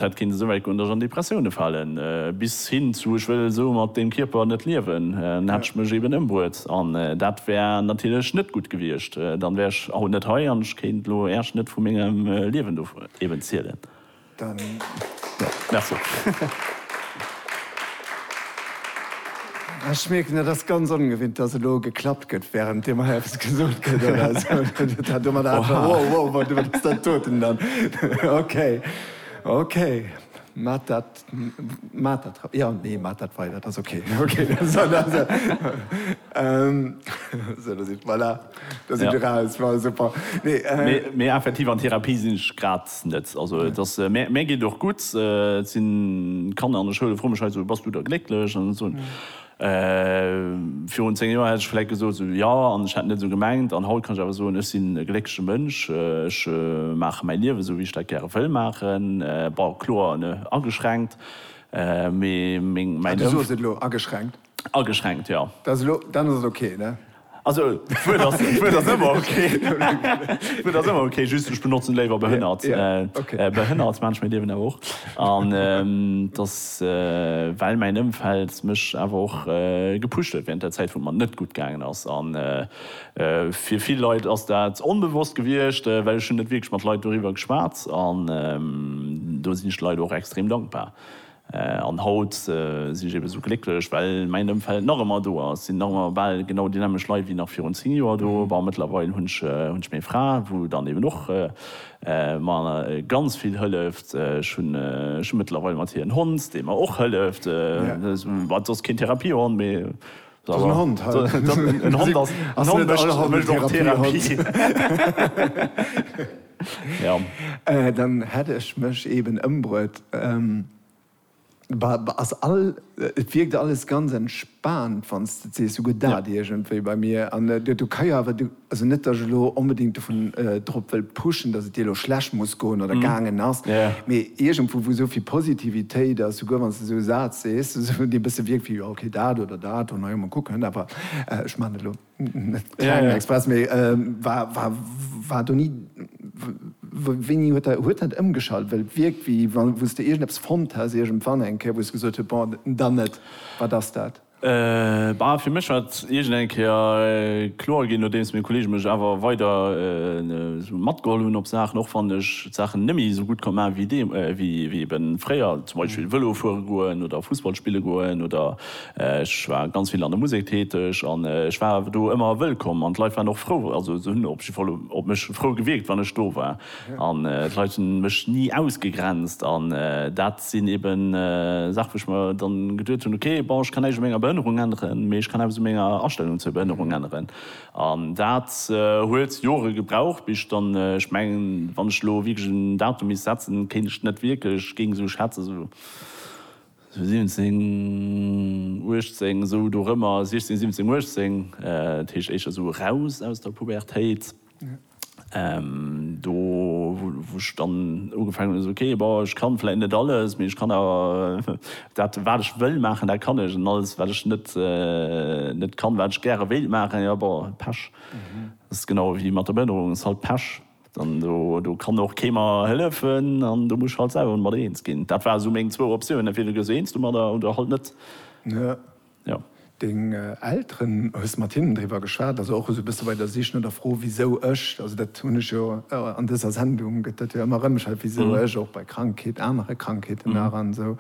Et kéint esou wäit goen, datt ech an Depressioune falen, bis hin zu ech wëll esou mat deem Kierper net liewen, dann hätt ech mech eben ëmbruet an dat wär natierlech net gutt gewiescht. Dann wär ech haut net hei an ech kéint elo Äerch net vu mengem Liewen do eben zielen. Ech mierken, dat ass ganz ongewinnt, datt elo geklappt gëtt, wärend deem hei eppes gesot gëtt. Oha. Domadder hat. Wow, wow, wow, wat ass dat doten dann? Okay. Mee effektiv an Therapie sinn ech grad net. Also et ass, mär geet och gutt. Et sinn Kanner an der Schoul, froe mech hei esou, bass du da glécklech? An dann esou, Virun 10 Joer hätt ech vläit gesot, esou jo, an ech hätt et net esou gemengt. An haut kann ech awer soen, ech sinn e gléckleche Mënsch, ech maache mäi Liewen esou, wéi ech dat gäre wëll maachen. Bon, kloer ageschränkt, mee meng. Ah, du soos et elo, ageschränkt? Ageschränkt, jo. Dann ass et ok, ne? Also, d'Wuert ass, d'Wuert ass ëmmer ok, d'Wuert ass ëmmer ok, just ech benotzen léiwer behënnert, behënnert, Mensch, mir liewen awer och. An et ass, well mäin Ëmfeld mech awer och gepusht huet während der Zäit, wou et mer net gutt gaangen ass. A fir vill Leit ass dat onbewosst gewiescht, well ech hunn net wierklech mat Leit doriwwer geschwat. An do sinn ech de Leit och extrem dankbar, An haut sinn ech eben esou glécklech, well mäin Ëmfeld nach ëmmer do ass. Et sinn nach ëmmer bal genau déi nämmeg Leit wéi nach virun 10 Joer do. Bon, mëttlerweil hunn ech meng Fra, wou dann eben och mer ganz vill hëlleft. Ech hunn mëttlerweil mat hir en Hond, dee mer och hëlleft, wat soss keen Therapiehond, mee Dat ass en Hond. En Hond ass, en Hond mécht och Therapie. Ja. Dann hätt ech mech eben ëmbruet. Ass all, et wierkt alles ganz entspaant, wann s de et sees. Sou gëtt dat iergendwéi bei mir. An du, du ka jo awer, du. Also net, datt ech elo onbedéngt dovun drop wëll pushen, datt et dir elo schlecht muss goen oder gaangen ass, mee iergendwou, wou esou vill Positivitéit ass, souguer wann s de esou e Saz sees, dee e bësse wierkt wéi, jo, okay, dat oder dat, na jo, mol kucken, awer ech maachen dat elo net kleng express, mee war, war, war do ni, wéini huet dat, huet dat ëmgeschalt? Well et wierkt, wéi wa wou s de iergendeppes fonnt häss iergendwann eng Kéier, wou s de gesot hues, bon, dann net, wat ass dat? Bah, fir mech war et iergend eng Kéier kloer ginn, nodeems meng Kolleege mech awer weider esou matgeholl hunn op Saachen, och wann ech d'Saachen net méi esou gutt konnt maachen, wéi ebe fréier, zum Beispill Vëlo fuere goen oder Fussball spille goen, oder ech war ganz vill an der Musek täteg an ech war awer do ëmmer wëllkomm an d'Leit waren och frou, also se hunn op jidde Fall op mech frou gewierkt, wann ech do war. An d'Leit hu mech ni ausgegrenzt. An dat sinn eben Saache wou ech mer dann geduet hunn, ok, bon, ech kann näischt u menger Behënnerung änneren, mee ech kann eppes u menger Astellung zur Behënnerung änneren. An dat huet Jore gebraucht, bis ech dann, ech mengen, wann ech elo wierklech en Datum misst setzen, kéint ech net wierklech, géing esou schätzen, esou 17, 18, esou dorëmmer, 16, 17, 18, dat heescht éischter esou eraus aus der Pubertéit. Do wou ech dann ugefaangen hunn, esou, okay, bon, ech kann vläit net alles, mee ech kann awer dat wat ech wëll maachen, dat kann ech, an alles wat ech net net kann, wat ech gäre wéilt maachen, jo, bon, Pech. Dat ass genau ewéi mat der Behënnerung, ass halt Pech. Dann do do kann och kee mer hëllefen an do muss ech halt selwer mat eens ginn. Dat ware sou meng zwou Optiounen, entweder gees du eens domadder oder halt net. jo. Deng Elteren, hues mat hinnen driwwer geschwat? Also och esou e bësse bei der Sich no der Fro wisou ech? Also dat hunn ech jo an dëser Sendung gëtt dat jo ëmmer erëm gestellt, wisou ech? Och bei Krankheet, anere Krankheeten nach an esou.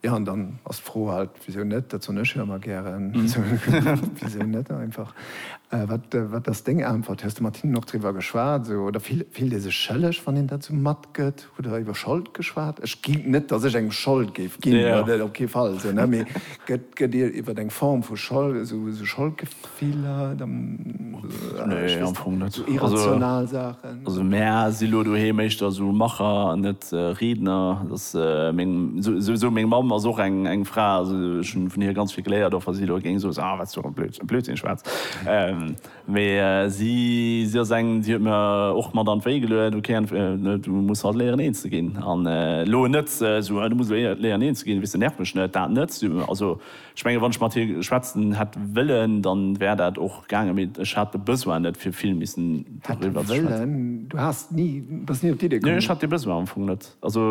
Jo an dann ass d'Fro halt, wisou net? Dat soen ech jo ëmmer gären, wisou net einfach? Wat ass deng Äntwert? Hues de mat hinnen och driwwer geschwat esou oder fillt ee sech schëlleg wann een dat esou mat. gëtt, hutt Der iwwer Schold geschwat? Ech ginn, net datt ech engem Schold géif ginn, dat op kee Fall, esou, ne, mee gëtt, gëtt Dir iwwer eng Form vu Schold, esou, esou Scholdgefiller, dann, nee, ech weess net, esou irrational Saachen? Also mär si lo doheem éischter esou Macher an net Riedner, dass meng, esou, esou, esou meng Mamm ass och eng, eng Fra, also ech hunn vun hir ganz vill geléiert, och wa si elo géing soen, ah, wat s du och e Blödsinn schwätz. Mee si si ass eng, déi huet mir och mat an d'Wéi geluecht, ok an du muss halt léieren een ze ginn an elo net esou, du muss elo léieren een ze ginn, weess de, nerv mech net, dat net. Also ech menge wann ech mat hir schwätzen hätt wëllen, dann wär dat och gaangen, mee ech hat de Besoin net fir vill missen doriwwer ze schwätzen. Hätte wëllen? Du has ni, bass ni op d'Idee komm? Nee, ech hat dee Besoin am Fong net. Also.